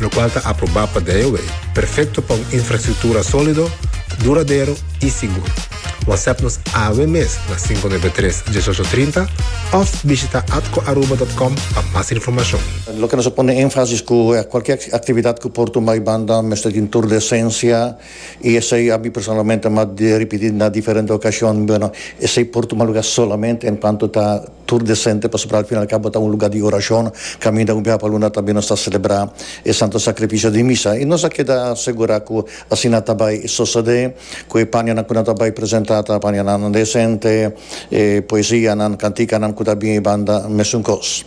lokual ta aprobá pa DIOA, perfekto pa un infrastruktura sólido, duradero i sigur. Whatsapp nos awe mes na sinku nebe tres, dieshocho trinta òf bishita atcoaruba dòt com pa mas informashon. Loke nos a pone énfasis ku kualke aktividat ku por tumá e banda mester tin tur de esensia i esei a mi personalmente m'ha ripití na diferente okashon, bueno, esei por tuma lugá solamente enkuanto ta Tur desente pasobra al fin al cabo ta un lugar di oracion. Caminda un biaha pa luna tambe nos ta celebra e Santo Sacrificio di Misa y nos a keda segura cu asina ta bay sosode, cu e panianan cu nan ta bay presenta ta panianan desente, e poesianan, canticanan cu ta bin banda mesun cos.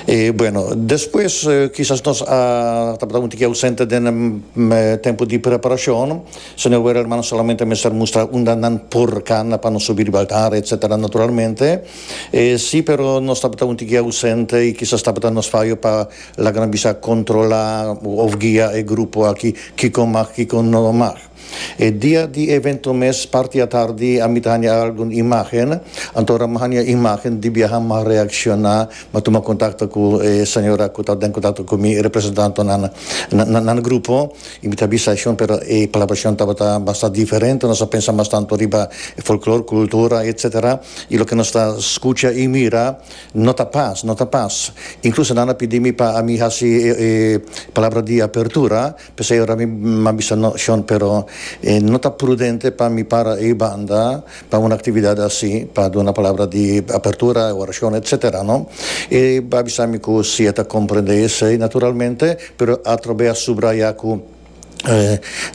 E bueno, despues kisas nos a tabata un tiki ausente den e tempo di preparacion. Señor Werel hermano solamente mester mustra unda nan por cana pa nos subi riba altar etc. Naturalmente e si pero nos tabata un tiki ausente y kisas tabata nos fayo pa laga nos bisa controla of guia e grupo aki kiko mag kiko no mag. E dia di evento mes parti atardi a mi ta hanja algun imagen anto ora mi hanja imagen di biaha mi a reacciona mi a tuma contacto cu e señora cu ta den contacto cu mi e representantonan na nan grupo. Y mi ta bisa Shon pero e palabra Shon tabata basta diferente, nos a pensa mas tanto riba e folklor, kultura etc. Y loke nos ta skucha y mira no ta pas, no ta pas. Inkluso nan a pidi mi pa ami hasi e palabra di apertura, p'esei ora mi a bisa no Shon pero no ta prudente pa mi para ei banda Pa un actividad así, pa duna palabra di apertura, oracion, etc. No? E a bisa mi cu si e ta comprende esey naturalmente, pero atrobe a subraya cu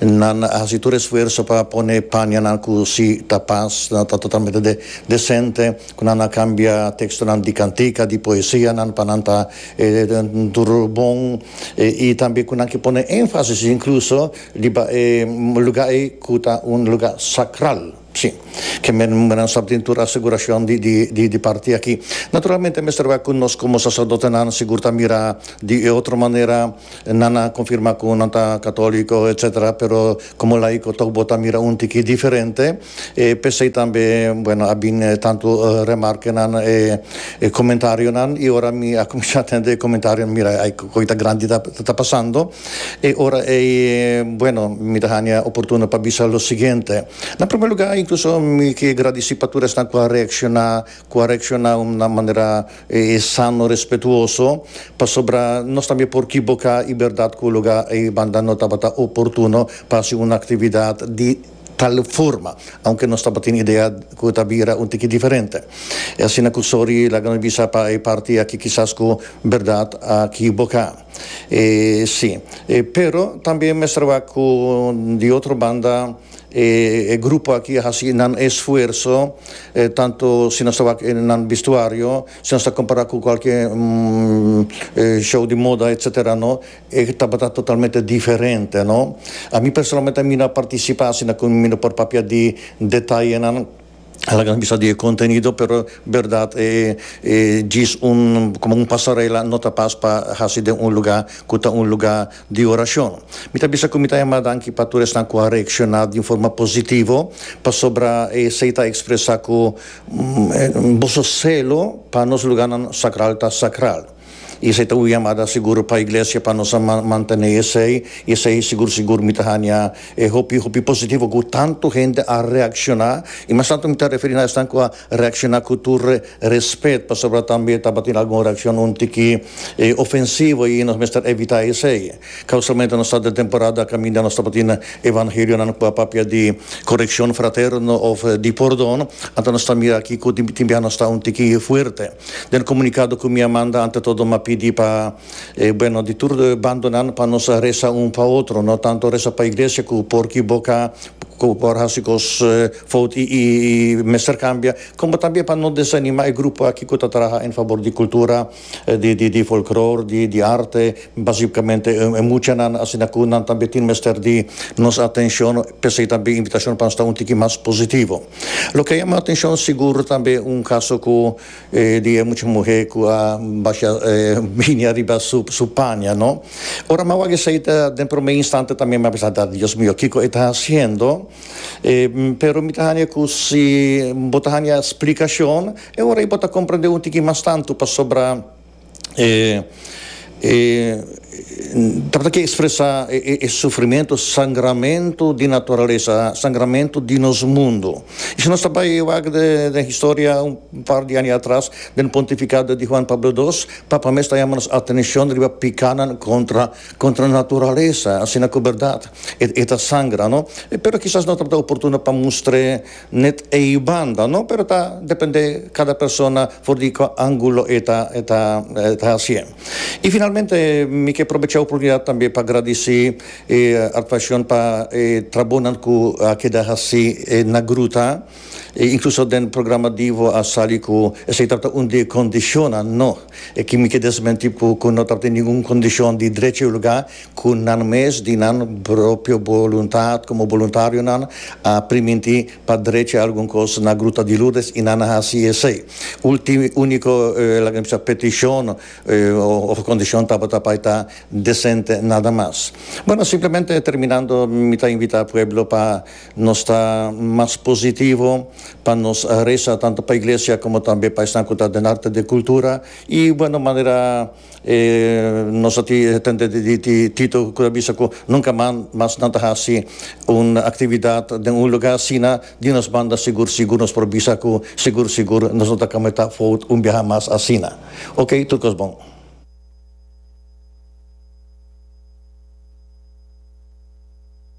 nan a haci tur esfuerzo pa pone panianan cu si ta pas, ta totalmente de, decente, cu nan a cambia textonan di cantica, di poesianan pa nan ta tur bon, y tambe cu nan ke pone enfasis incluso, Riba e luga ei ku ta un luga sakral, si, ke menan sa tin tur asegurashon di parti aki. Naturalmente mester wak ku nos komo saserdotenan sigur ta mira di e otro manera, nan a konfirmá ku nan ta katoliko, etsetera, pero komo laiko tok bo ta mira un tiki diferente. E p'esei tambe, bueno, a bin e tantu remarkenan, e e komentarionan, i ora mi a kuminsá tende e komentarionan, mira, ai ku koita grandi ta ta pasando. E ora ei, bueno, mi ta haña oportuno pa bisa lo siguiente, na promé lugá, inkluso mi ke gradisí pa tur esnan ku a reakshoná, ku a reakshoná na un manera sano, respetuoso, pasobra nos tambe por kiboká i bèrdat ku lugá ei banda no tabata oportuno pa hasi un aktividat di. tal forma, aunke nos tabatin idea cu ta bira un tiki diferente. E asina cu Sori laga nos bisa pa e parti aki kisas cu berdad a kiboca. E si. E pero tambe mester wak cu di otro banda e grupo aki a haci nan esfuerso, tanto si nos ta wak nan vestuario, si nos ta compara cu cualkier show di moda etc. No. E tabata totalmente diferente, no? A mi personalmente a mi no a participa asina cu mi no por papia di detayenan a laga nos bisa di e contenido pero berdad e e djis un como un pasarela no ta pas pa haci den un lugar cu ta un lugar di oracion. Mi ta bisa cu mi ta yama danki pa tur esnan cu a reacciona di un forma positivo pasobra esey ta expresa cu boso celo pa nos lugarnan sacral ta sacral. I esei ta un yamada sigur pa Iglesia pa nos a mantené esei, i esei sigur sigur mi ta haña e hopi hopi positivo ku tantu hende a reakshoná, i mas tantu mi ta referí na esnan ku a reakshoná ku tur respet, pasobra tambe tabatin algun reakshon un tiki ofensivo i nos mester evitá esei. Ka usualmente nos ta den temporada kaminda nos tabatin evangelionan ku a papia di korekshon fraterno òf di pordon, anto nos ta mira akí ku tin tin biaha nos ta un tiki fuerte. Den comunicado cu mi a manda ante todo m'a pidi pa e bueno di tur bando nan pa nos a reza un pa otro no tanto reza pa iglesia cu por ki bo ca cu por haci cos fout y mester cambia como también pa no desanima e grupo aki cu ta traha en favor di cultura di di folklor di di arte basicamente e muchanan asina cu nan tambe tin mester di nos atencion p'esey tambe invitacion pa sta un tiki mas positivo. Lo ke a yama atenshon sigur tambe un kaso ku di e mucha muhé ku a basha binia riba su paña, no? Ora m'a wak esei ta den promé instante tambe m'a pensa ta Dios mio kiko e ta hasiendo? Pero mi ta haña ku si bo ta haña splikashon e ora ei bo ta komprendé un tiki mas tantu pasobra E tabata ke expresa e sufrimentu, sangramentu di naturalesa, sangramentu di nos mundu. Y si nos ta bai wak den historia un par di aña atras, den pontificado di Juan Pablo Dos, Papa mes ta yama nos atencion riba picanan contra, contra naturalesa, asina cu berdad e ta sangra, no? Pero kisas no tabata oportuno pa mustr'e Net ei banda no pero ta depende cada persona for di cu angulo e ta e ta e ta hacié. Y finalmente mi ke probecha e oportunidad tambe pa gradici e Artvacion pa e trabonan cu a keda haci na gruta y incluso den programa Divo a sali cu esey tabata un di e condicionnan no, e ki mi ke desmenti cu no tabata ningun condicion di drecha y lugar Ku nan mes di nan propio boluntat komo boluntarionan a primintí pa drecha algun kos na Gruta di Lourdes i nan a hasi esei. Ulti úniko laga mi bisa petishon òf kondishon tabata pa e ta desente nada mas. Bueno, simplemente terminando mi ta invitá pueblo pa nos ta mas positivo, pa nos resa tantu pa iglesia komo tambe pa esnan ku ta den arte de kultura i bueno manera. E nos a tende di Tito cu ta bisa cu nunca mas nan ta haci un actividad den un lugar asina di nos banda sigur sigur nos por bisa cu sigur sigur nos no ta cometa fout un biaha mas asina. Ok tur cos bon.